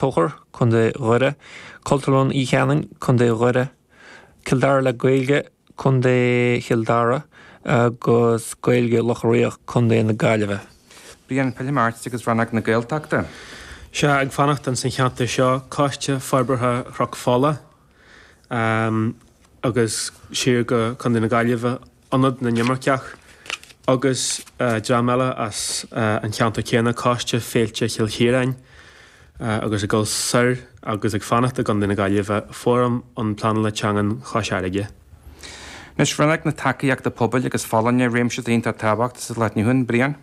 Tóchair, Co. Dhoire, Cultúrlann Uí Chanáin, Co. Dhoire, Cill Dara le Gaeilge, Co. Chill Dara, agus Gaeilge Locha Riach, Co. na Gaillimhe. Brian, pillfidh mé ort agus rannóg na Gaeltachta. Sea, ag fanacht ins an cheantar seo, Coiste Forbartha Chnoc Fola, agus siar go Co. na Gaillimhe, Ionad na nImirceach, agus dream eile as an cheantar céanna, Coiste Féilte Chill Chiaráin, agus ag dul soir agus ag fanacht i gContae na Gaillimhe, Fóram um Pleanála Teangan Chois Fharraige. Anois, rannóg na tacaíochta pobail agus folláine réimse iontach tábhachtach sa lá atá inniu ann, Brian.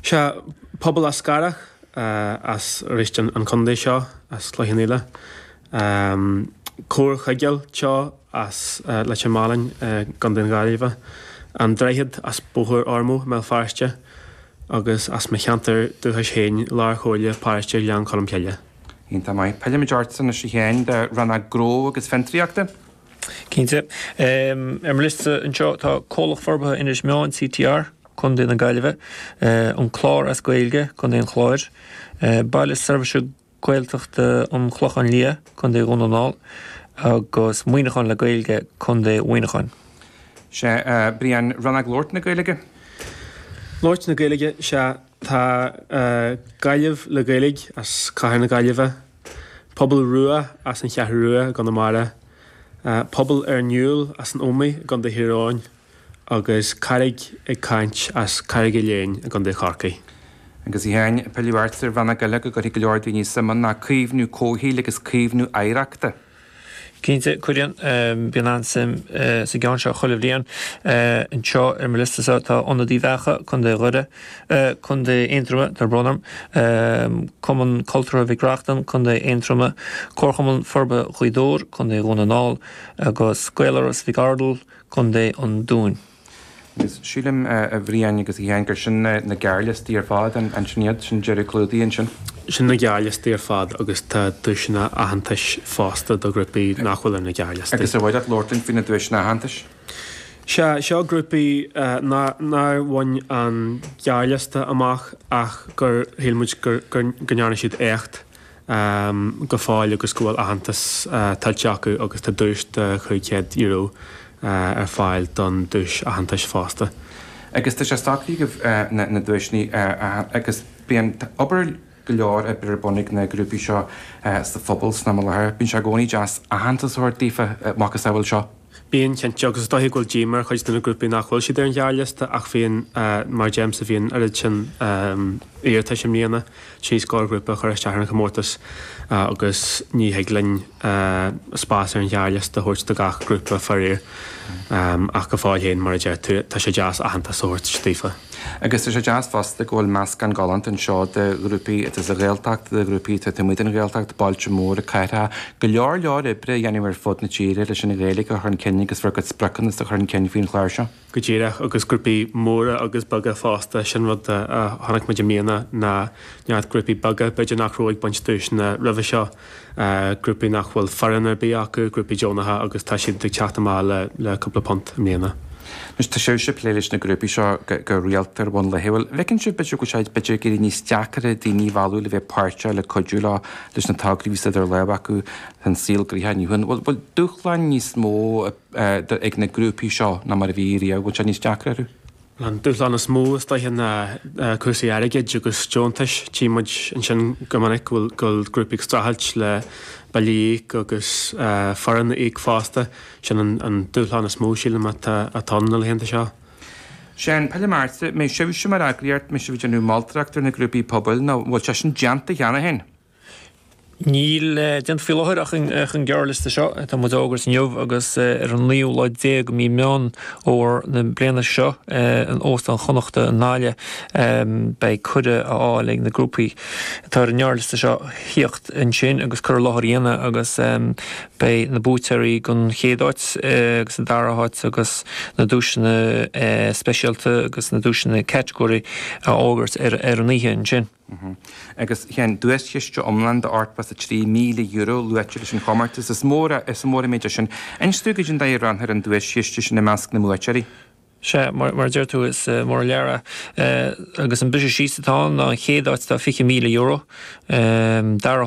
Sea, Pobal Eascarrach, as arís an contae seo, as Cloich Cheann Fhaola. Comhar Chuigéal Teo as Leitir Mealláin i gContae na Gaillimhe. An Droichead as Bóthar Ormeau i mBéal Feirste. Agus as mo cheantar dúchais féin, Lár Chomhairle Paróiste Ghleann Cholm Cille. Iontach maith. Pillfidh mé ortsa anois féin do rannóg Gnó agus Fiontraíochta. Cinnte. Ar mo liosta anseo tá Comhlacht Forbartha Inis Meáin, CTR, Co. na Gaillimhe, An Clár as Gaeilge, Co. an Chláir, Baile Seirbhíse Gaeltachta an Chlochán Liath, Co. Dhún na nGall, agus Muineachán le Gaeilge, Co. Mhuineacháin. Sea, Brian, rannóg Labhairt na Gaeilge? Labhairt na Gaeilge, sea. Tá Gaillimh le Gaeilge as cathair na Gaillimhe. Pobal Rua as an Cheathrú Rua i gConamara, Pobal ar an Iúl as an Ómaigh i gContae Thír Eoghain agus Carraig ag Caint as Carraig Uí Leighin i gContae Chorcaí. Agus í féin ag pilleadh ort ar cheann acu go gcuirfidh go leor daoine suim ann ná caomhnú comhshaoil agus caomhnú oidhreachta. Cinnte, cuireann. Bíonn an-suim sa gceann seo chuile bhliain. Anseo ar mo liostasa tá Ionad Uíbh Eachach, Co. Dhoire, Co. Aontroma, tá brón orm, Cumann Cultúrtha Mhic Reachtain, Co. Aontroma, Comharchumann Forbartha Ghaoth Dobhair, Co. Dhún na nGall, agus Gaeláras Mhic Ardghail, Co. an Dúin. Agus sílim, a Bhriain agus a Sheáin, gur sin na gearrliostaí ar fad, an sin iad? Sin deireadh clúdaithe ansin? Sin na gearrliostaí ar fad agus tá duaiseanna aitheantais fosta do ghrúpaí nach bhfuil ar na gearrliostaí. Agus ar mhaith leat labhairt faoi na duaiseanna aitheantais? Sea, seo grúpaí nár bhain an gearrliosta amach ach gur shíl muid go ndearna siad éacht. go fóill agus go bhfuil aitheantas tuillte acu agus tá duais de €500 ar fáil don duais aitheantais fosta. Agus tá sé stoc agaibh na duaiseanna agus bíonn obair go leor oibre ar bun ag na grúpaí seo sa phobal san am i láthair. Bíonn sé i gcónaí deas aitheantas a thabhairt daofa a mhacasamhail seo. Bíonn, cinnte, agus is dóiche go bhfuil díoma ar chuid de na grúpaí nach bhfuil siad ar an ghearrliosta ach bhí, mar a deirimse, bhí an oiread sin iarratais i mbliana, trí scór grúpa a chuir isteach ar an chomórtas agus ní thig linn spás ar an ghearrliosta a thabhairt do gach grúpa, faraor. Ach go fóill féin, mar a deir tú, tá sé deas aitheantas a thabhairt daofa. Agus tá sé deas fosta go bhfuil meascán galánta anseo de ghrúpaí atá sa Ghaeltacht, de ghrúpaí atá taobh amuigh den Ghaeltacht, bailte móra, cathracha. Go leor leor oibre á dhéanamh ar fud na tíre leis an Ghaeilge a chur chun cinn agus bhur gcuid spriocanna a chur chun cinn faoin chlár seo. Go díreach, agus grúpaí móra agus beaga fosta. Sin rud a chonaic muid i mbliana, ná neart grúpaí beaga, b'fhéidir nach raibh ag baint duaiseanna roimhe seo, grúpaí nach bhfuil foireann ar bith acu, grúpaí deonacha agus tá siad ag teacht amach le le cúpla punt i mbliana. Anois tá sibhse ag plé leis na grúpaí seo go rialta ar bhonn laethúil. An bhfeiceann sibh b'fhéidir go bhfuil sé b'fhéidir ag éirí níos deacra daoine a mhealladh le bheith páirteach, le cuidiú leo leis na tograí a bhíos idir lámha acu san saol gnaitheach inniu féin. Bhfuil bhfuil dúshláin níos mó ag na grúpaí seo ná mar a bhí riamh? Bhfuil sé níos deacra orthu? An dúshlán is mó is dóiche ná cúrsaí airgid agus deontais. Tchí muid ansin go minic go bhfuil grúpaí ag streachailt le billí a íoc agus foireann a íoc fosta. Sin an dúshlán is mó, sílim, atá ann na laethanta seo. Séan, Peil i mBearta, mbeidh sibhse mar eagraíocht, mbeidh sibh ag déanamh moltóireacht ar na grúpaí pobail nó an bhfuil sé sin déanta cheana féin? Níl déanta faoi láthair ach an gearrliosta seo atá muid a fhógairt inniu agus ar an naoú lá déag de mhí Meán Fómhair na bliana seo in Óstán Chonnacht i nGaillimh beidh cuireadh á fháil ag na grúpaí atá ar an ngearrliosta seo a thíocht ansin agus cur i láthair a dhéanamh agus beidh na buaiteoirí den chéad áit agus den dara háit agus na duaiseanna speisialta agus na duaiseanna catagóirí á bhfógairt ar an oíche ansin. Uh-huh. Agus tá an duaischiste iomlán de €83,000 luaite leis an chomórtas. Is mór a, is mór an méid é sin. Inis dúinn cad é an dóigh a roinnfear an duaischiste sin i measc na mbuaiteoirí? Sea, mar, mar a deir tú, is mór an lear é. Agus an briseadh síos atá ann ná an chéad áit tá €20,000, dara háit